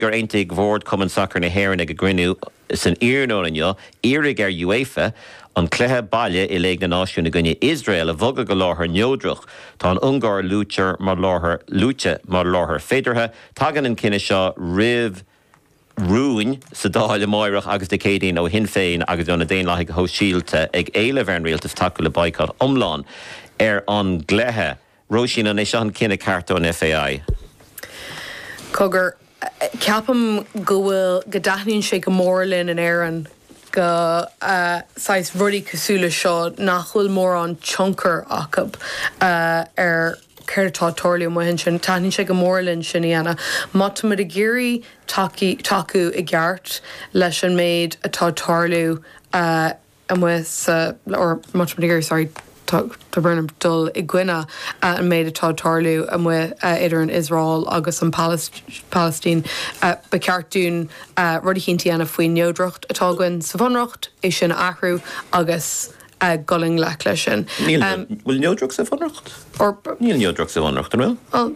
gur aontaigh bord Chumann Sacair na hÉireann ag a gcruinniú san iarnóin inniu iarraidh ar UEFA an cluiche baile i Léig na Náisiún i gcoinne Iosrael a bhogadh go láthair neodrach. Tá an Ungáir luaite mar láthair luaite mar láthair féideartha. Tagann an cinneadh seo roimh rúin sa Dáil amáireach agus Dé Céadaoin ó Shinn Féin agus ó na Daonlathaigh Shóisialta ag éileamh ar an Rialtas tacú le baghcat iomlán ar an gcluiche. Róisín, An é seo an cinneadh ceart ón FAI? Cogar, Ceapaim go bhfuil, go dtaitníonn sé go mór linn in Éirinn go, saghas rudaí cosúil le seo nach bhfuil mórán tionchar acu ar céard atá ag tarlú amuigh ansin. Taitníonn sé go mór linn sin a dhéanamh. Má tá muid ag iarraidh tacaí, tacú i gceart leis an méid atá ag tarlú, amuigh sa, má tá muid, sorry, ag dul i gcoinne an méid atá ag tarlú amuigh idir an Iosrael agus an Palaistín. Ba cheart dúinn rud eicínt a dhéanamh faoin neodracht atá againn sa Bhunreacht, é sin a athrú agus dul i ngleic leis sin. Níl, an bhfuil neodracht sa Bhunreacht? Or. Níl neodracht sa Bhunreacht, an bhfuil? Well.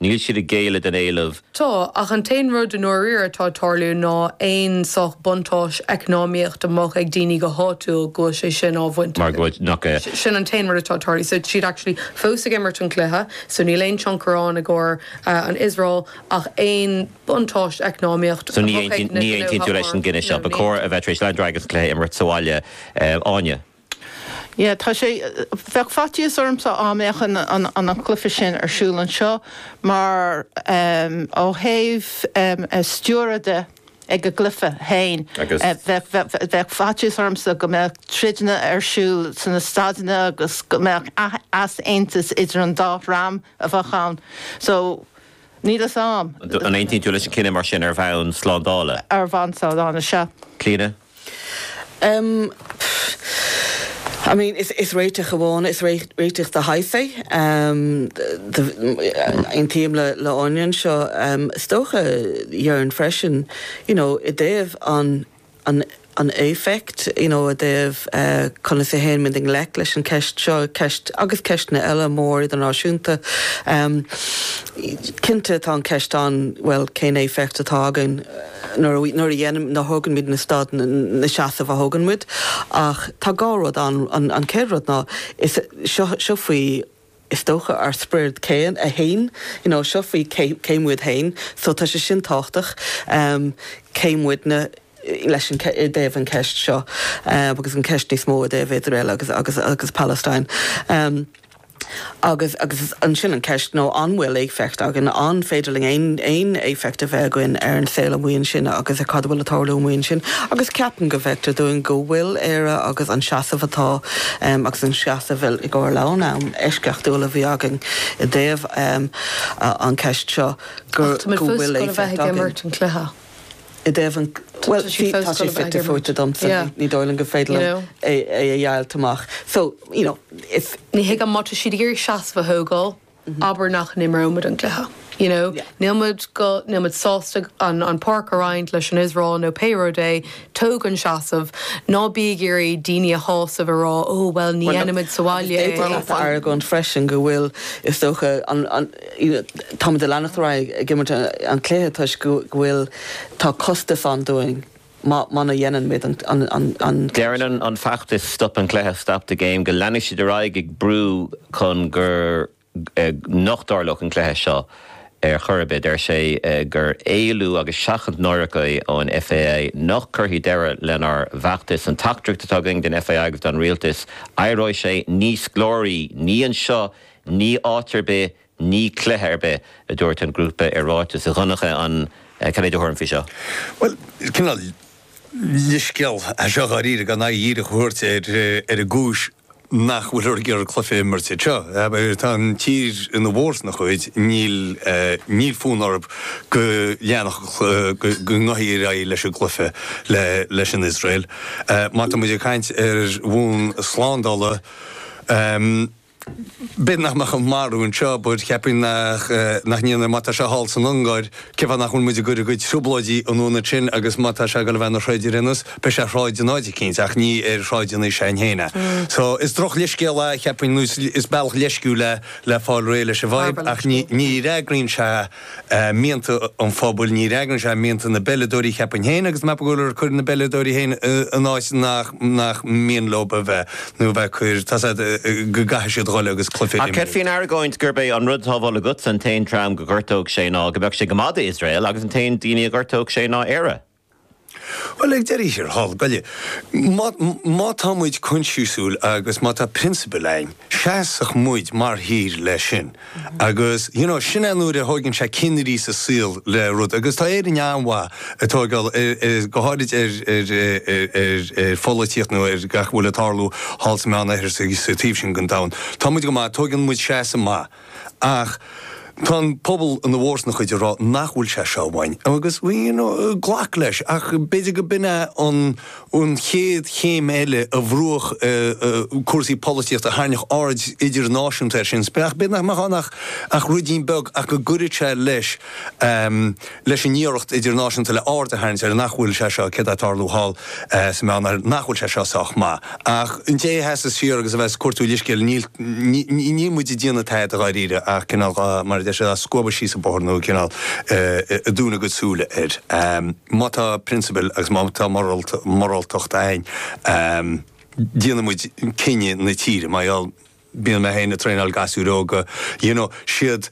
Níl siad ag géilleadh don éileamh. Tá, ach an t-aon rud i ndáiríre atá ag tarlú ná aon saghas buntáiste eacnamaíochta a mbeadh ag daoine go háitiúil go bhfuil sé sin á bhaint acu. Mar go bhfuil nach é. Sin an t-aon rud atá ag tarlú. So siad actually fós ag imirt an chluiche, so níl aon tionchar ann i gcomhair an Iosrael ach aon buntáiste eacnamaíochta a mbeadh ag na gnóthaí agus na daoine. So ní aontaíonn tú leis an gcinneadh seo. Ba chóir a bheith tar éis leanúint ar aghaidh agus an cluiche a imirt sa bhaile, Áine. Yeah, tá sé, bheadh faitíos ormsa dá mbeadh an, an, an, an cluife sin ar siúl anseo mar em, ó thaobh em, eh, stiúradh de ag an gcluife féin, Agus- eh, bheadh, bheadh, bheadh, bheadh faitíos ormsa go mbeadh troideanna ar siúl san na staideanna agus go mbeadh ath- easaontas idir an dá dhream a bheadh ann. So, níl fhios a'm D- An aontaíonn tú leis an cinneadh mar sin ar bhonn slándála? Ar bhonn slándála, sea. Clíona? Pfff. I mean, is réiteach amháin, is réiteach de shaghas é. Aontaím le hÁine anseo. Is dócha dheirfinn freisin, you know, i dtaobh an éifeacht, you know, i dtaobh conas a théann muid i ngleic leis an gceist seo, ceist, agus ceisteanna eile mór idirnáisiúnta. Cinnte tá an cheist ann, bhuel, cén éifeacht atá againn? nuair a dhéanaim, nuair a thógann muid na stad, na seasamh a thógann muid. Ach tá dhá rud ann. An chéad rud ná, is seo, seo faoi, is dócha, ár sprid féin, a haon. You know, seo faoi cé, cé muid féin. So tá sé sin tábhachtach, cé muidne leis an, i dtaobh an ceist seo, agus an ceist níos mó i dtaobh Iosrael agus, agus, agus Palestine. Agus ansin an ceist ná an bhfuil éifeacht againn, an féidir linn aon aon éifeacht a bheith againn ar an saol amuigh ansin agus ar cad a bhfuil ag tarlú amuigh ansin. Agus ceapaim go bhfeictear dúinn go bhfuil Éire agus an seasamh atá agus an seasamh i i gcomhair le an-am eisceachtúil a bhí againn i dtaobh an ceist seo go bhfuil i dtaobh an, bhuel, bhí, tá sé fite fuaite domsa, ní dóigh liom gur féidir liom é a dheighilt amach. So, you know, if. Ní thuigim má tá siad ag iarraidh seasamh a thógáil, abair nach n-imreoimid an cluiche, you know. Nílimid go, nílimid sásta an, an páirc a roinnt leis an Iosrael nó pé rud é, Tóg an seasamh. Ná bí ag iarraidh daoine a shásamh, a rá, Ó, bhuel, ní dhéanfaimid sa bhaile é. Agus d'fhéadfadh leat a argóint freisin go bhfuil, is dócha, an, an, you know, táimid ag leanacht ar aghaidh ag imirt an cluiche toisc go bhfuil, tá costas ann dúinn má, muna dheinimid an, an, an, an cluiche seo. Deireann an, an feachtas Stop an Cluiche, Stop the Game, go leanfaidh siad ar aghaidh ag brú chun gur. Nach dtarlódh an cluiche seo ar chor ar bith. Deir sé gur éalú agus seachaint náireach é ón FAI. Nach gcuirfidh deireadh lenár bhfeachtas. An teachtaireacht atá againn don FAI agus don rialtas, éireoidh sé níos glóraí. Ní anseo, ní áit ar bith, ní cluiche ar bith, a dúirt an grúpa i ráiteas. A Dhonncha, an, céard é do thuairim faoi seo? Bhuel, cineál leithscéal é seo dháiríre gan aghaidh dhíreach a thabhairt ar an gcúis nach bhfuilthear ag iarraidh an cluiche a imirt anseo. Tá an tír ina mórchuid, níl fonn orthu go leanfadh go ngabhfaí ar aghaidh leis an gcluiche leis an Iosrael. Má tá muid ag caint ar bhonn slándála, B'fhéidir nach mbeadh an marú anseo, but cheapfainn nach, nach ndéanfaidh. Má tá sé thall san Ungáir, cén fáth nach bhfuil muid ag cur a gcuid trioblóidí an ionad sin agus má tá sé ag dul a bheith ina throid ar aon nós, beidh sé ag throid in áit eicínt ach ní ar shráid an aois shin féin é. So, is droch leithscéal é, cheapfainn, nó is, is bealach leisciúil é le fáil réidh leis an bhfadhb ach ní, ní fhreagraíonn sé. mianta an phobail, ní fhreagraíonn sé mianta na bpeileadóirí, cheapfainn féin, agus mé ag gol air, cuireann na bpeileadóirí féin in áit nach mian leo a bheith, nó a bheith ag cur, tá a fhios agat, go gcaithfidh siad a ghoil agus cluiche a imirt. D'fhéadfaí an argóint gurb é an rud atá ag dhul agatsa, an t-aon dream go gcuideodh sé ná go mbeadh sé go maith d'Iosrael, agus an t-aon daoine a ngortódh sé ná Éire. Bhuel, ag deireadh thiar thall, go leor, má tá muid coinsiasúil agus má tá prionsabail againn, seasfaidh muid mar thír leis sin. Agus, you know, sin é nuair a thóigeann sé ceannairí sa saol le rud. Agus tá Éirinn an-mhaith ag tóigeáil ar, go háirid ar, ar, ar, ar pholaitíocht nó ar gach a bhfuil ag tarlú thall sa Meánoirthear, sa taobh sin den domhan. Tá muid go maith, tóigeann muid seasamh maith. Ach tá an pobal ina bhfurmhór acu ag rá nach bhfuil sé seo ceart amháin agus you know glac leis ach b'fhéidir go b'in é an an chéad chéim eile a bhrúfadh cúrsaí polaitíochta a thairnfeadh aird idirnáisiúnta air sin ach b'fhéidir nach mbeadh ann ach ach ruidín beag ach go gcuirfeadh sé leis leis an iarracht idirnáisiúnta le aird a tharraingt ar nach bhfuil sé seo, céard atá ag tarlú thall sa Meánoirthear, nach bhfuil sé seo sách maith. Ach ag dul thart is siar agus a bheith ag cuartú leithscéal, níl, níl muid ag déanamh tada dháiríre ach cineál dhá, mar a deir siad, dhá scuabadh síos an bóthar nó cineál ag dúnadh a gcuid súile air. Má tá prionsabal agus má tá moráltacht a'inn, déanfaidh muid cinneadh na tíre, mar gheall, bíonn mé féin ag traenáil gasúir óga, you know, siad,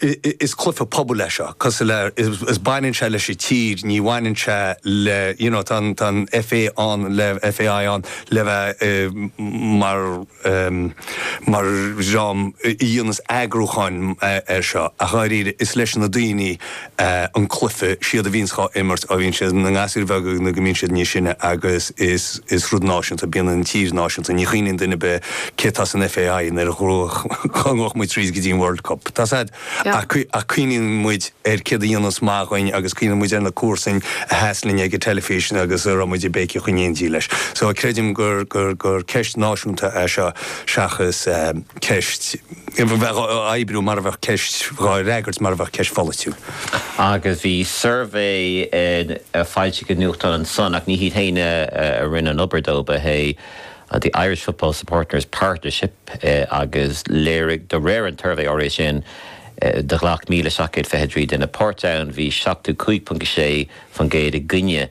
is cluiche pobail é seo cosúil le is baineann sé leis an tír ní bhaineann sé le you know tá an tá an FA an FAI ann le bheith mar mar dhream a dhéanas eagrúchán ar seo ach dháiríre is leis na daoine an cluiche, siad a bhíonns dhá imirt, ó bhíonn siad ina ngasúir bheaga nó go mbíonn siad níos sine agus is is rud náisiúnta bíonn an tír náisiúnta, ní chuimhníonn duine ar bith cé tá san FAI nuair a ghruag dhá ngluais muid tríd go dtí an World Cup, tá said, ach ach cuimhníonn muid ar céard a dhéananns maith dhúinn agus cuimhníonn muid ar na comharsain a sheas linn ag an teilifís agus a raibh muid ag béiceadh in éindí leis. So creidim gur gur gur ceist náisiúnta é seo seachas ceist bheadh á oibriú mar a bheadh ceist ghá fhreagairt mar a bheadh ceist pholaitiúil. Agus bhí suirbhé foilsithe i nuachtán an Sun, ach ní hiad féin a rinne an obair dó, ba é an The Irish Football Supporters Partnership agus léirigh, de réir an tsuirbhé áirithe sin, do ghlac míle seacht gcéad fiche trí duine páirt ann, bhí 75.6% i gcoinne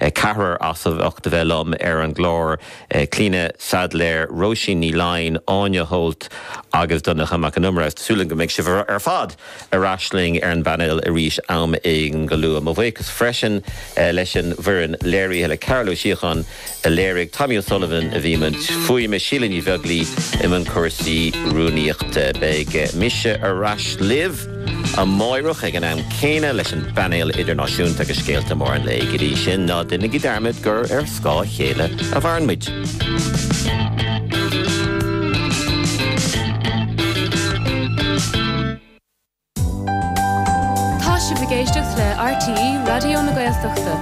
Ceathrar as ucht a bheith liom ar an gclár, Clíona Saidléar, Róisín Ní Laighin, Áine Holt agus Donncha Mac an Iomaire. Tá súil agam go mbeidh sibh ar fad ar ais linn ar an bpainéal arís am éigin go luath. Mo bhuíochas freisin leis an bhfoireann léirithe, le Cearbhall Ó Síocháin, a léirigh Tommy O'Sullivan, a bhí i mbun fuaime Síle Ní Bheaglaoi i mbun cúrsaí rúnaíochta. Beidh mise ar ais libh amáireach ag an am céanna leis an bpainéal idirnáisiúnta agus scéalta móra an lae. Go dtí sin, ná deinigí dearmad gur ar scáth a chéile a mhaireann muid. Tá sibh ag éisteacht le RTÉ Raidió na Gaeltachta.